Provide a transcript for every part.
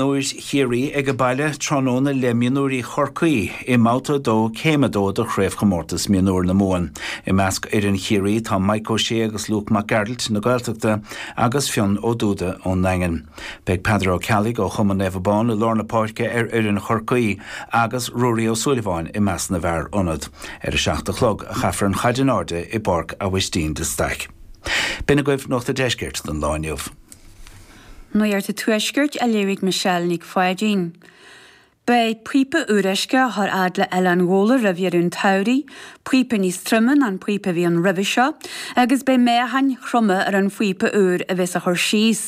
Níl Ciarraí ag baile tráthnóna le mionúirí Chorcaí i mbabhta 2 Céim 2 de Chraobhchomórtas Mionúir na Mumhan. I measc fhoireann Chiarraí tá Maidhc Ó Sé agus Luke Mac Gearailt na Gaeltachta agus Fionn Ó Dubhda ón nDaingean. Beidh Peadar Ó Ceallaigh ó chumann Naomh Abán i lár na páirce ar fhoireann Chorcaí agus Ruairí Ó Súilleabháin i measc na bhfear ionaid. Ar a seacht a chlog a chaithfear an chaid in airde i bPáirc Aibhistín de Staic. B'in agaibh Nuacht an Deiscirt don lá inniu. Nuacht an Tuaiscirt á léamh ag Michelle Nic Pháidín. Beidh píopa úr uisce á chur fhad le Oileán Ghabhla roimh dheireadh an tsamhraidh, píopa níos troime ná an píopa a bhí ann roimhe seo agus beidh meáchain throma ar an phíopa úr a bheas á chur síos.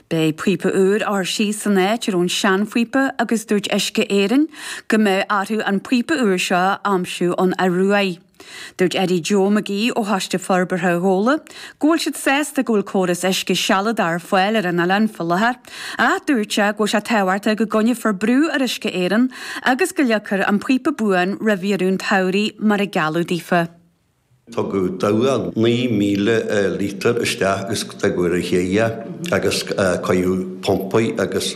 Beidh píopa úr á chur síos san áit a raibh an seanphíopa agus dúirt Uisce Éireann go mbeidh orthu an píopa úr seo a aimsiú ón Ioruaidh. Dúirt Eddie Joe McGee ó Choiste Forbartha Ghabhla go bhfuil siad sásta go bhfuil córas uisce sealadach ar fáil ar an oileán faoi láthair ach dúirt sé go bhfuil sé tábhachtach go gcoinneofar brú ar Uisce Éireann agus go leagfar an píopa buan roimh dheireadh an tsamhraidh mar a gealladh daofa. Tugadh dabhach 9,000 lítear isteach agus tugadh ar a chéile agus cuireadh pumpaí agus.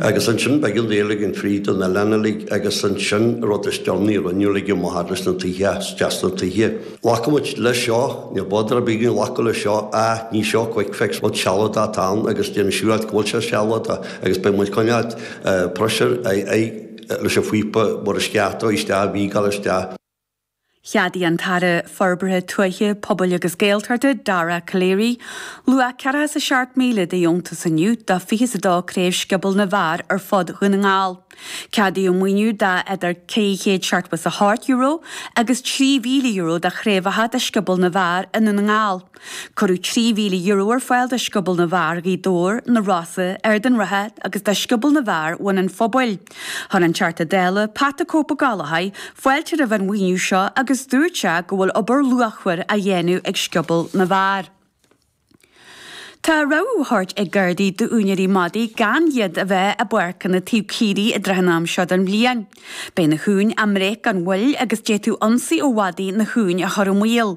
Agus ansin beidh an fhéile againn fríd an oileán uilig agus ansin, rud is deireanaí a rinneadh uilig, amuigh thart leis na tithe, isteach sna tithe. Ghlac muid leis seo, níl bother ar bith againn glacadh leis seo, ah ní seo quick fix, rud sealadach atá ann agus déanamh siúráilte go bhfuil sé sealadach agus beidh muid coinneáilt pressure, aghaidh, leis an phíopa mar is ceart a thabhairt isteach, a thógáil isteach. Cheadaigh an tAire Forbartha Tuaithe, Pobail agus Gaeltachta, Dara Calleary, luach 47,000 de dheontas inniu do 22 craobh Scioból na bhfear ar fud Dhún na nGall. Ceadaíodh an maoiniú de idir €378 agus €3,000 do chraobhacha de Scioból na bhfear i nDún na nGall. Cuireadh €3,000 ar fáil do Scioból na bhFear, Ghaoth Dobhair, na Rosa, Ard an Rátha agus do Scioból na bhFear, Bhun an Phobail. Chuir an Teachta Dála, Pat the Cope Ó Gallchóir, fáilte roimh an mhaoiniú seo agus dúirt sé go bhfuil obair luachmhar á dhéanamh ag Scioból na bhFear. Tá rabhadh á thabhairt ag Gardaí d'úinéirí madaí gan iad a bheith i bpáirceanna taobh le caoirigh i dtrátha an am seo den bhliain. Beidh na huain á mbreith gan mhoill agus d'fhéadfadh ionsaí ó mhadaí na huain a chur i mbaol.